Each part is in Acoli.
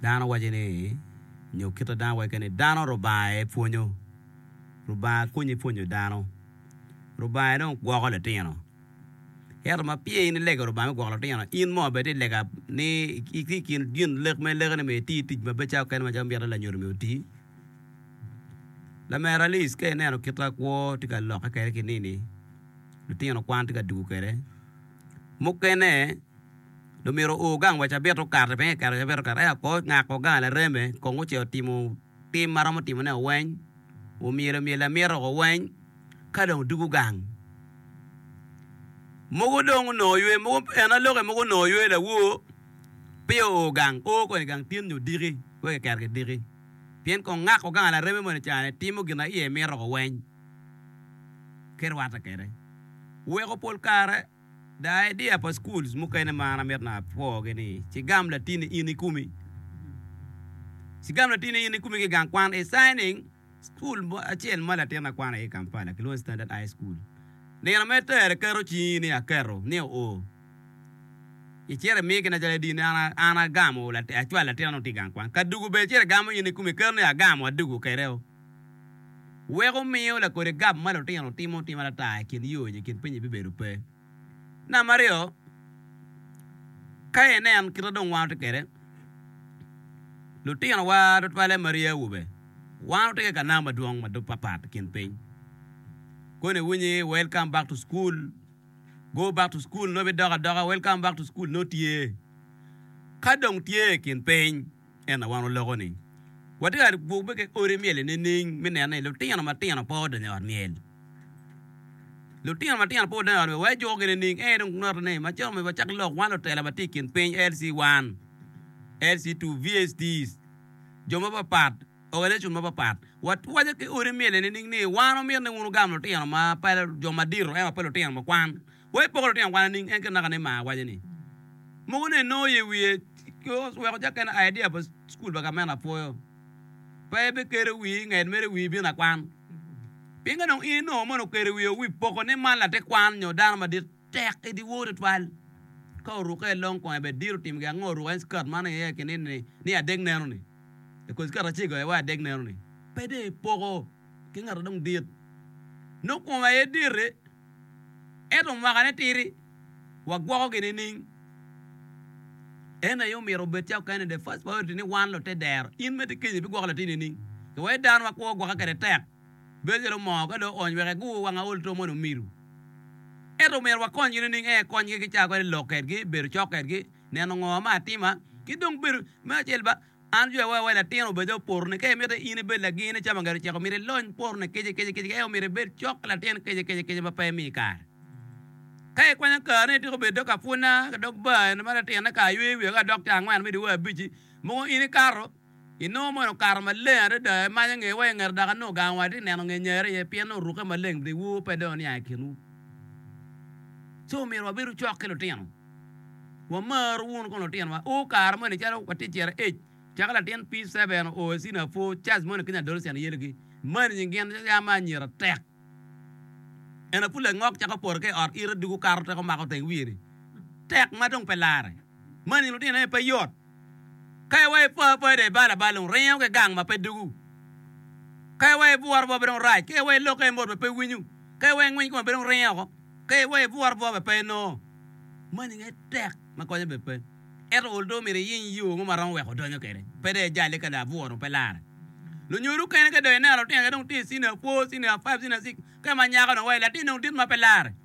Dano waco ni, nyo kit ma dano waco kene ni, dano Rubanga aye pwonyo. Rubanga konyi pwonyo dano. Rubanga aye dong gwoko litino. Ento ma pire in ilego Rubanga me gwoko litino, in mo bene ti lega ni itye i kin gin lek ma ilego ni myero iti tic ma beco kene macalo miti ni lanyodo myero oti. Lamera Alice ka ineno kit ma kwo tye ka lokke kwede ki nini, litino kwan tye ka dwogo kwede. Mukene. Dong myero oor gang wa cabit okato, pingo iketo cabit okato? Eka kor ongako gang lareme kong ocito otimo tim ma romo timone o weny, omyelo myel lamyeta o weny, ka dong dwogo gang. Mogo dong onongo ywe, mogo en a loke mogo onongo ywe lawor, peya oor gang, oor kong i gang tin nyo diki, wek kiketo ki diki. Pien kong ngako gang lareme moni cani, timo gin ma iye mito o weny, ki rwatte kede. Weko pol kare. Da idea pa schools mukene ma an amito na apwogi ni cigam latini in ikumi, cigam latini in ikumi ki gang kwan i signing school mo acel ma latina kwano iye i Kampala kilwongo ni Standard High School. Nino ma itero iketo cingi ni aketo ni oo icito imi gina calo edi ni an agamo acwalo latina ni otii gang kwan. Kadugu bene icito igamo in ikumi iketo ni agamo adugu kede oo. weko miyo lakodi gab ma lutino timo tim atata i kin yo nyo i kin pinyi bibedo pe. Namba aryo, ka inen kit ma dong wan watye kwede, lutinowa tutwalle ma ryee awobe, wan watye ki kanam madwong ma papat i kin piny. Koni iwinyi welcome back to school, go back to school nongo bidok adoka, welcome back to school nongo tye. Ka dong tye i kin piny. Ento wan oloko ni watye ka gwokke ki odi myel-li nining? Me neno ni lutino matino pe odonyo i ot myel. Lutino matino pe odonyo i ot myel, wa ijukogi nining? Ee, dong noti ni macalo myero wacak lok, wan lutela ma tye i kin piny, LC 1, LC 2, VSTs, jo mapapat, organization mapapat, watwaco ki odi myel-li nining ni wan omyero ni wun wugam lutino ma pe jo madito ento pe lutino ma kwan? Wa ipoko lutino kwan nining? En kit naka ni mar waco ni, Mogo ni enongo ye wiye oweko ca kene idea pa cukul pa gamente apwoyo. Pe ebikerre wii i nget mere wii bino akwan. Pien ka dong in inongo mono okerre wii o wii poko ni man latin kwan nyo dano madit tek idi wor twatwal. Ka orukke i long kong ebed dir otim gi ango oruko en skirt man aye i kinin ni ni adek neno ni. I kor skirt acego aye wa adek neno ni. Pe dong ipoko ki ngat adong dit. Nongo kome aye diti. Ento mwakane titi, wagwokogi nining? En aye omyero obed ca okene, the first priority, ni wan lute dero. In me ti kiny ibigwoko latin nining? Ka wai dano ma kwo gwoke kede tek, bedo calo moo ka dong oony wek egur wang aol two moni omiru. Ento omyero wakonygi nining? Ee, konygi ki caa kwede lok kedgi, bedo cok kedgi, neno ngo ma atima, ki dong bedo, me acel ba, Man jwe woko iwa latin obed o porone. Ka imito in ibed lagine cam angedo oceko, myero ilony porone kica kica kica. Eka myero ibed cok ki latin kica kica kica ma pe imi kare. Ka ikwanyo kareni ityeko bedo dog apwunna, dog bar eni ma latinne kare yweyo wiye ka dokta angwen me dyewer abic-ci. Mogo in ikato, inongo moni okato maleng adada, imanyo nge wa ingeto dok anongo gang wa tye neno nge nyare iye pien nongo orukke maleng bri wu pe dong niang i kinwu. Co myero wabedo cok ki lutino. Wamar wunu kong lutinowa. O, kare moni calo watye ciro ec, caka latin P. Seven oo i cini apwo, Charles moni keny adolescent yelgi, mani nying gin yam ma anyira tek. Eno pud langok cako poto ka i ot ite dugo kato teko mako teng wiye-ni. Tek ma dong pe larre. Mani nying lutino aye pe yot. Kae wa i po apoya dong ibalo abal dong ringo ki gang ma pe dugu. Kae wa ibworo bwa pe dong rac. Kae wa ilokke i mot ma pe winyo. Kae wa ingwiny kome pe dong ringo oko. Kae wa ibworo bwa ma pe inongo. Mani nge tek ma konyo bed pe. Ento ol dong myero iyiny yo mo ma romo weko donyo kwede. Pe dong ijale ka labwor dong pe lare. Lunyodo okene ka dong ineno lutino aye dong tye i senior four, senior five, senior six. Kae ma nyako dong wa i latin dong dit ma pe lare.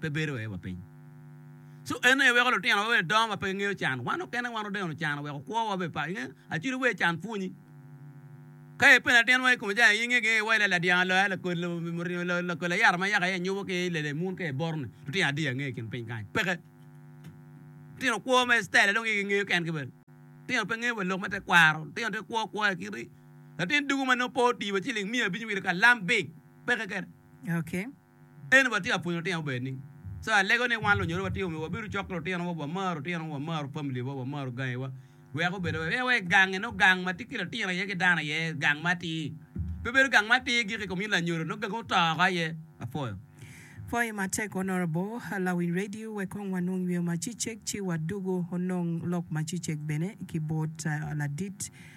pe bedo aye wa piny. So en aye weko lutino wa bene dongo ma pe gengeyo can. Wan okene wan odeno can weko kwo wa bene pa. Inge acudi wer can pwonyi. Ka ipeno latin mo ikome ca inge gi iwaci la ladyang loya lakolo muringo lakol ayata ma yaka aye anyubo ki lele mun ka iboro ni lutino adi ange ikin piny kany peke. Lutino kwo ma style dong gi gengeyo kengi bene. Lutino pe nge wa lok me te kwaro. Lutino te kwo kwo ya kiti latin dugu ma nongo pe oti wa ciling miya abicwi ka lam big peke kene. Eni watye ka pwonyo lutino bene ni, ca alego ni wan lunyodhi watye omyero wabedo cok ki lutinowa, wamar lutinowa, wamar pamiliwa, wamar gangiwa, wek obed maber. Pien wai gangi nongo gang ma tye ki litino iye ki dano iye, gang matir. Pe bedo gang matir gik i kom in lanyodo, nongo gangi oto oko aye. Apwoyo. Pwoyi matek Honourable lawiny radio wek kong wanong nyweo macecek ci wadugu onong lok macecek bene ki bot ladit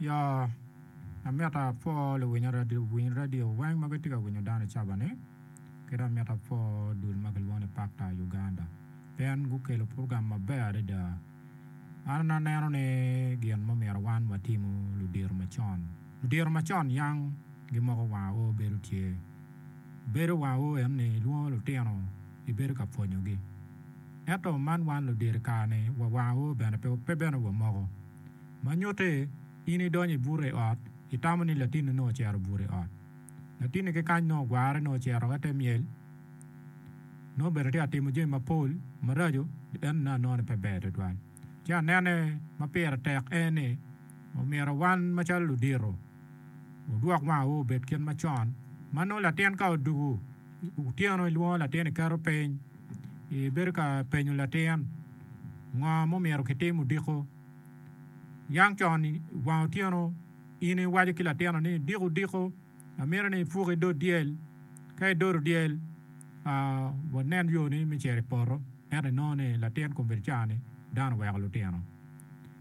Ya, amito apwo luwiny radio weng ma gitye ka winyo dano i cabane, ki dong amito apwo dul ma kilwongo ni Pakta Uganda pien gukelo purogam maber adada. An aneno ni gin ma omyero wan watimo ludito macon, ludito macon yang gimoko wanga o bedo tye. Bedo wanga o en ni ilwongo lutino ibedo ka pwonyogi. Ento man wan ludito i kare-ni wa wanga o bene pe bene wamoko. Ma nyutte, in idonyo i bute i ot, itamo ni latinni nongo ocito buto i ot. Latinni ki kany nongo ogwarre, nongo ocito woko i te myel, nongo obedo tye ka timo jami mapol maraco, en ne anongo ni pe ber tutwal. Ci anene ma pire tek en ni, omyero wan macalo ludito wodwok wangewa obed kit ma con, ma nongo latin ka odwogo otyeno ilwongo latin iketo piny, ibedo ka penyo latin ngo ma omyero kitim odiko. Niang con i wang otyeno, in iwaco ki latinoni ni, 'Diko diko, amito ni ipuk i dog dyel. Ka idodo dyel, wanen yoni me cito i poto. Ento inongo ni latin kombeddi ca-ni dano oweko lutino.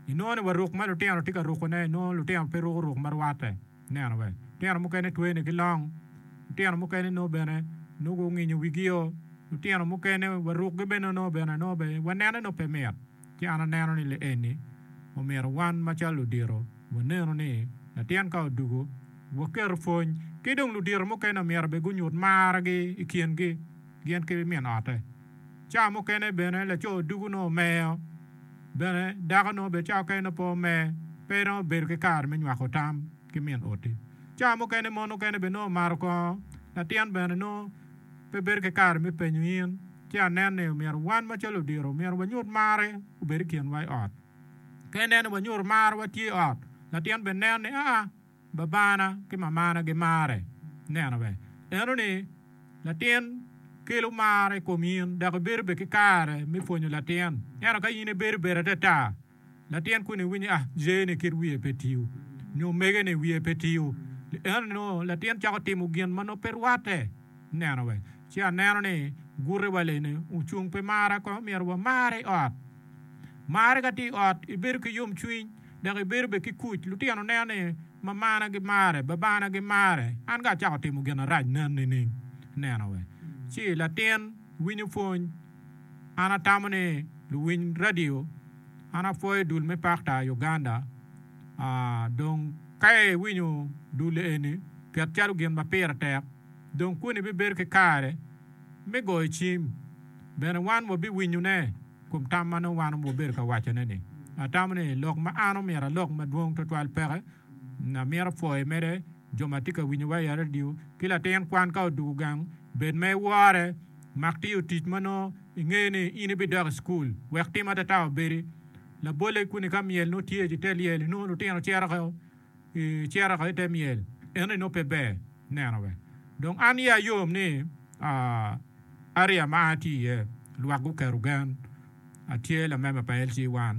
Inongo ni wa ruk ma lutino tye ka rukone, inongo lutino pe ruko ruk ma rwatte. Ineno be? Lutino mukene twene ki long, lutino mukene nongo bene nongo gunginyo wigio, lutino mukene wa rukgi bene nongo bene nongo bene wanene nongo pe mit. Ci an aneno ni lienni omyero wan macalo ludito wanenu ni latin ka odwogo, waketo pwony. Ki dong ludito mukene omyero bene gunyut margi i kingi gin ki min ote. Cawa mukene bene laco odwogo nongo omeyo, bene dako nongo bene cawa okene nongo pe omer, pe iromo bedo ki kare me nywako tam ki min oti. Cawa mukene mon mukene bene nongo omaro kongo, latin bene nongo. Pe bedo ki kare me penyo in, ci anen ni omyero wan macalo odiro omyero wanyut marre obed i kinwa i ot. Ka ineno ni wanyuto mar wa tye i ot, latin bene neno ni aa, babana ki mamana gimarre. Ineno be? Neno ni latin kelo mar i kom in dok ibedo be ki kare me pwonyo latin. Ento ka in ibedo beda ata ata, Latin kuni winyo ni a, jeyene kit wiye pe tiyo, nyo omegene wiye pe tiyo. Ento nongo latin cako timo gin ma nongo pe rwatte. Neno wek ci aneno ni gute wa lene ocung pi marra kong omyero wa marre i ot. Marre ka tye i ot ibedo ki yom cwiny dok ibedo bene ki kuc. Lutino neno ni mamana gi marre, babana gi marre, an ka acako timo gin arac nen nining? Neno wek ci latin winyo pwony. An atamo ni luwiny radio, an apwoyo i dul me Pakta i Uganda. Dong ka iwinyo dul eni ket calo gin ma pire tek, dong kuni bibedo ki kare me goyo cim. Bene wan wabiwinyone kom tam ma nongo wan wabedo ka wacone-ni. Atamo ni lok ma an omyero alok madwong twatwal peke Amito pwoyi mede jo ma tye ka winyowa i redio ki latin kwan ka odwogo gang. Bed ma iwore, mak tiyo tic ma nongo ingeyo ni in ibidok i cukul wek tim atata obedi labolle. Kuni ka myel nongo tye i te lyel inongo lutino cito woko i te myel, ento inongo pe ber neno be. Dong an iya yom ni aria ma an atye iye lwak guketo gen. Atye lamemba pa LG1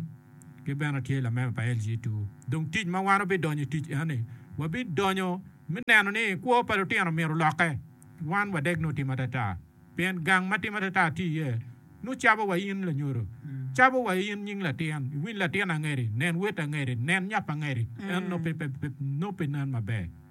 ki bene atye lamemba pa LG2. Dong tic ma wan wabidonyo i tic eni, wabidonyo me neno ni kwo pa lutino myero olokke. Wan wadek nongo timo atata pien gang ma timo atata tye iye nongo cabo wa in lanyodo, cabo wa in nying latin, iwiny latin angedi, nen wet angedi, nen nyap angedi, en nongo pe nen maber.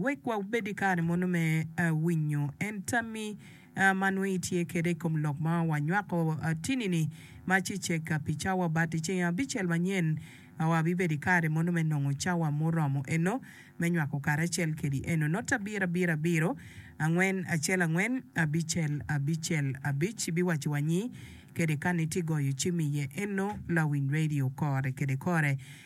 Wek wabed ki kare mono me winyo en tammi ma nongo itye kwede i kom lok ma wanywako tini-ni ma ci cegga pi cawa bati. I ceng abicel manyen, wabibedo ki kare mono me nongo cawa muromo eno me nywako karacel kwedi. Eno note abirabira abiro, angwen acel angwen, abicel abicel abic ibiwacci wanyi kede ka ni tye goyo cimi iye. Eno lawiny radio kore kede kore.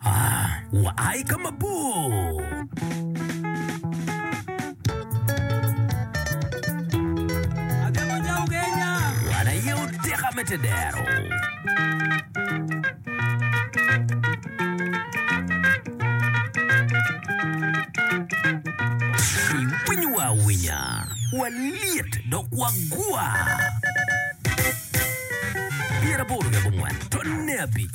Wa i ka mabor. Wan aye oteka me tedero. Iwinyowa awinya, walyet dok wagwa. Pyeraboro ki abongwen, tonni abic.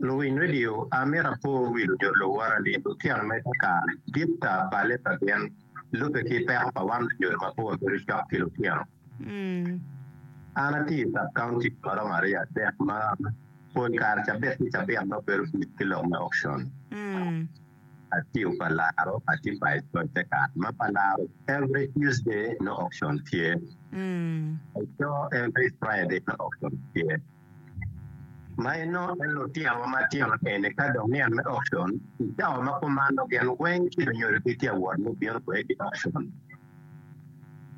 Luwiny redio, amito apor wi luco luwora ni lutino me kakare dit ta balle pa gin lubbe ki peko pa wan lunyodi mapol bedo cok ki lutino. An atye i sub county ma romo aryo adek ma pol kare cabit ki cabit nongo bedo busy ki lok me auction. Atiyo pa laro atye pa ecoy te kare ma pa laro every Tuesday no auction tye eco every Friday no auction tye ma inongo en lutino wa matino eni ka dong niang me auction icawa ma kumano gin weng ci lunyodo ki tye awot me bino kwede ki auction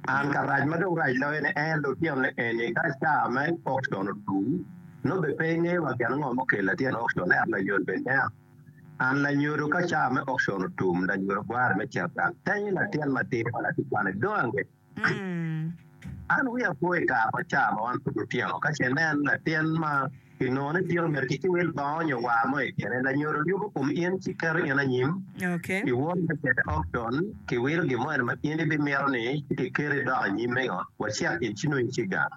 an ka rac ma dong rac loyo ni en lutino ni eni ka cawa me auction otum no be pe ingeyo wa gin ngo mukeli latin auction ento layol be nen An lanyodo, ka cawa me okcon otum, lanyodo gwara me ceta. Tenyo latin matidi ma latikwane dong ange ki. An wiya po i kare ma cawa ma wan pud wutino, ka ce ineno latin ma kinongo ni tino myero kiki wil bongo nyo war mo i kine. Lanyodo yubo kom in ci keto in anyim i won me ceta okcon, kiwilo gin mo eno ma in ibimito ni kikeri idok anyim mengo, wacit in ci nongo iciga.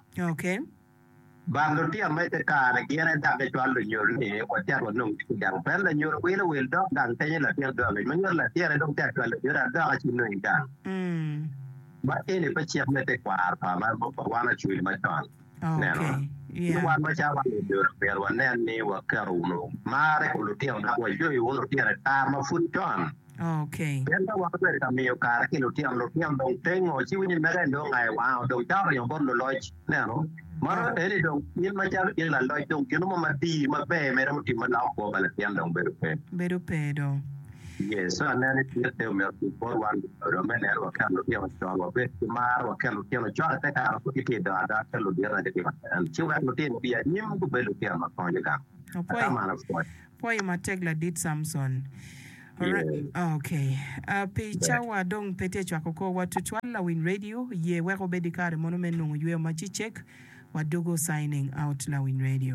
Bal lutino ma ite kare gire dok gicwalo lunyol ni watit wanong tic i gang. Pien lanyol wilo wil dok gang tenyo latin dong angec ma nyuto latirre dong tek cwalo lanyol adoka ci nong i gang. Ma eni pe cik me tekwaro pa wan Acholi macon. Neno, ci wan macalo wan lanyol omyero wanen ni waketo wunu mar i kom lutino dok wacoyo wunu lutino i kare ma pud con. Pien ka wan obedo ka miyo kare ki lutino, lutino dong tengo ci winyo mege dong aye wango, dong caro oringo bot luloc. Ineno? Mano eni dong in macalo in laloc dong gino mo matir maber mere mutimmi loko kwo pa latin dong bedo pe. Bedo pe dong. Yee, so aneno ni kit te omyero otim bot wan luloc me neno waket lutino con, wabed ki mar, waket lutino con ite kare pud gitye dongo adoka ka luditte gitye ka nen, ci wek lutino obi anyim gubed lutino ma konyo gang. Atamo an apwoyo. Pwoyo matek ladit Samson. Ok. Pi cawa dong pe tye cwako kor wa tutwal lawiny radio ye weko bedi kare mono me nongo yweyo ma cicek. Wadugo signing out lawiny radio.